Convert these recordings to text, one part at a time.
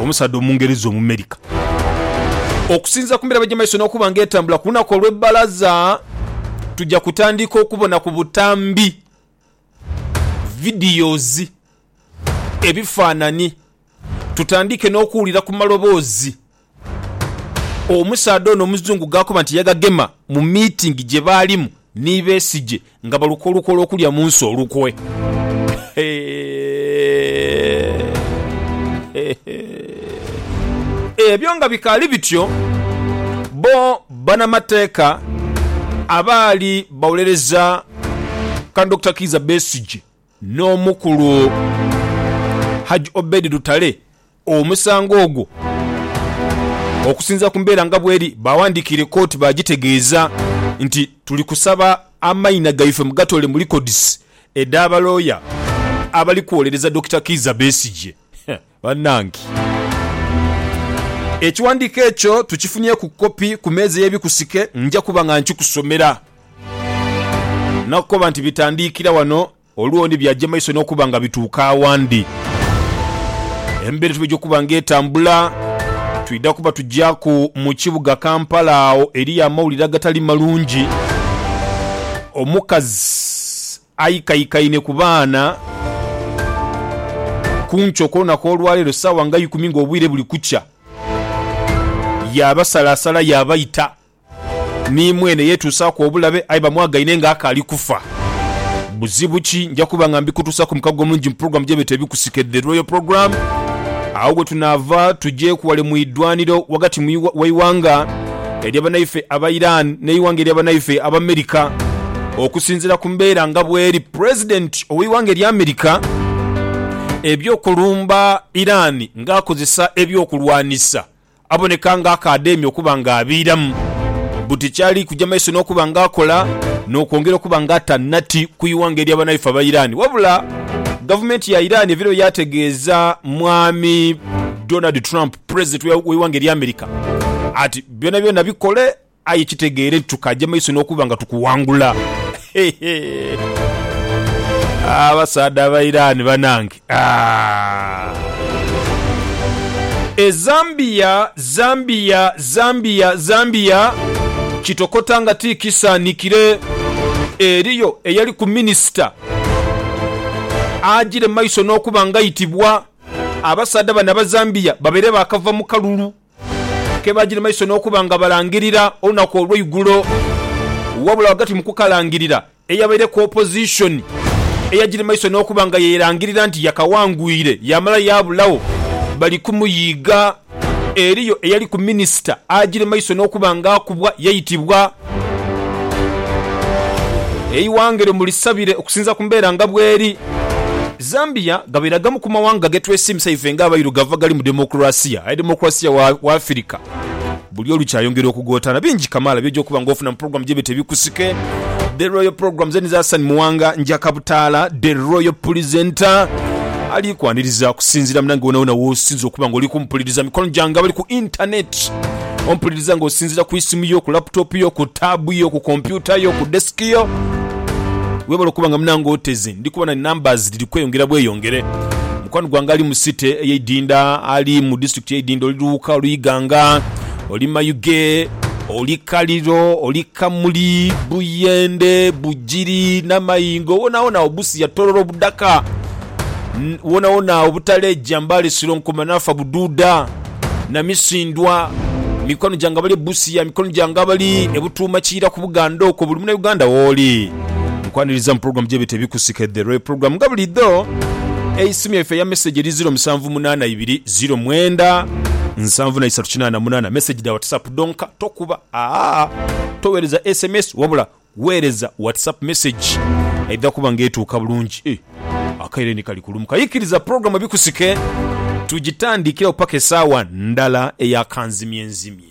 Omusaadha Omungereza Omumerika. Okusinziira ku mirabo egy'emaiso n'okuba nga etambula ku lunaku olw'ebbalaza, tuja kutandiika okubona ku butambi, videos, ebifaanani tutandiike n'okuwulira ku maloboozi. Omusaadha ono omuzungu ghakoba nti yagagema mu miitingi gye baalimu ni Besigye nga baluka olukwe olw'okulya mu nsi olukwe. Ebyo nga bikaali bityo, bbo banamateeka abaali bawolereza Can Dokita Kiiza Besigye N'omukulu Hajj Obed Lutale omusango ogwo okusinziira ku mbeera nga bweri baawandiikiire kkooti baagitegeeza nti, Tuli kusaba amaina gaife mugatoole mu likodizi edha balooya abali kwolereza Dokita Kiiza Besigye. Banange! Ekiwandiiko ekyo tukifunyeeku kopi ku meeza y'ebikusike, nja kuba nga nkikusomera. Nakukoba nti bitandiikira wano, olundi byaja maiso n'okuba nga bituuka awandi. Embeera etwidha okuba nga etambula, twidha kuba tujaaku mu kibuga Kampala agho eriyo amawulire agatali malungi. Omukazi Aikaikaine ku baana ku nkyo okw'olunaku olwaleero ssaawa nga ikumi nga obwire buli kukya, yaabasalaasala yaabaita, ni mwene yeetuusaaku obulabe aye bamwagaine nga akaali kufa. Buzibu ki? Nja kuba nga mbikutuusaaku mu mukago omulungi mu pulogulaamu gye beeta Ebikusike, The Royal Programme. Agho we tunaava tugye ku wale mu idwaniro ghagati mu w'eighanga erya banaife aba Iran n'eighanga erya banaife aba America. Okusinzira ku mbeera nga bweri, President ow'eighanga erya America eby'okulumba Iran nga akozesa eby'okulwanisa aboneka nga akaadhaimya okuba nga abiiramu buti kyali kuja maiso n'okuba nga akola n'okwongera okuba nga ata nati ku ighanga erya banaife aba Iran. Wabula gavumenti ya Iran ebiro yategeeza Mwami Donald Trump Pulezidenti w'eighanga erya America ati, Byonabyona bikole aye kitegeere nti tukaaja maiso n'okuba nga tukuwangula. Abasaadha aba Iran banange. E Zambia, Zambia, Zambia, Zambia, kitokota nga ti kisaanhikire. Eriyo eyaliku minisita ajiire mu maiso n'okuba ng'aitibwa Abasaadha bano Abazambia babaire baakava mu kalulu ke baagya ni maiso n'okuba nga balangirira olunaku olweigulo. Wabula ghagati mu kukalangirira, eyabaireku opozishoni eyagya ni maiso n'okuba nga yeerangirira nti yakaghangwire yaamala yaabulagho bali kumuyiiga. Eriyo eyaliku minisita aajire maiso n'okuba nga akubwa yaitibwa eighanga eryo mu lisabire okusinziira ku mbeera nga bweri. Zambia ghabaire agamu ku mawanga ge twesiimisa ife nga abairugavu agali mu demokulasiya, aye demokulasiya wa Afirika buli olukya ayongera okugotaana. Bingi kamaala by'oja okuba nga ofuna mu pulogulaamu gy'eby'eto ebikusike. The Royal Programmes Enizasan Muwanga Njakabutaala The Royal Pulisenta. Ali kwaniriza kusinziira mu nange wonawona w'osinza okuba nga oli kumpuliriza. Mikono gyange abali ku intaneeti, ompuliriza nga osinziira ku isimu yo, ku laputopu yo, ku taabu yo, ku kompyuta yo, ku desiki yo. Webale okuba nga munange oteze. Ndi kubona numbers dhiri kweyongera bweyongere. Mukwano gwange ali mu city eye Idinda, ali mu district eye Idinda, oli Luuka, oli Iganga, oli Mayuge, oli Kaliro, oli Kamuli, Buyende, Bugiri, Namayingo, wonawona agho, Busia, Tororo, Budaka. N, wonawona obutaleja mbali siro nkuma nafa buduuda na misindwa mikwano gyange abali e Busia, mikwano gyange abali e Butuuma Kiira ku Buganda okwo, buli muna Uganda wooli nkwaniriza mu program gyebeta Ebikusike The Real Program nga bulidho eisimu yaife eya message eri ziro musanvu munaana ibiri ziro mwenda nsanvu na isatu kinaana munaana message dha WhatsApp dhonka tokuba aa towereza sms wabula Weereza WhatsApp message eidha kuba nga etuuka bulungi. Akaire ni kali kulumuka. Ikiriza pulogulamu ebikusike tugitandikiragho paka esaawa ndala eya kanzimyenzimye.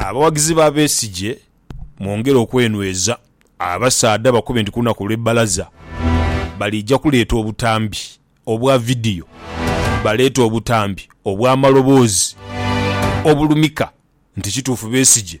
Abawagizi ba Besigye mwongere okwenweza. Abasaadha bakube nti ku lunaku olwe bbalaza baliija kuleeta obutambi obwa vidiyo, baleete obutambi obwa maloboozi obulumika nti kituufu Besigye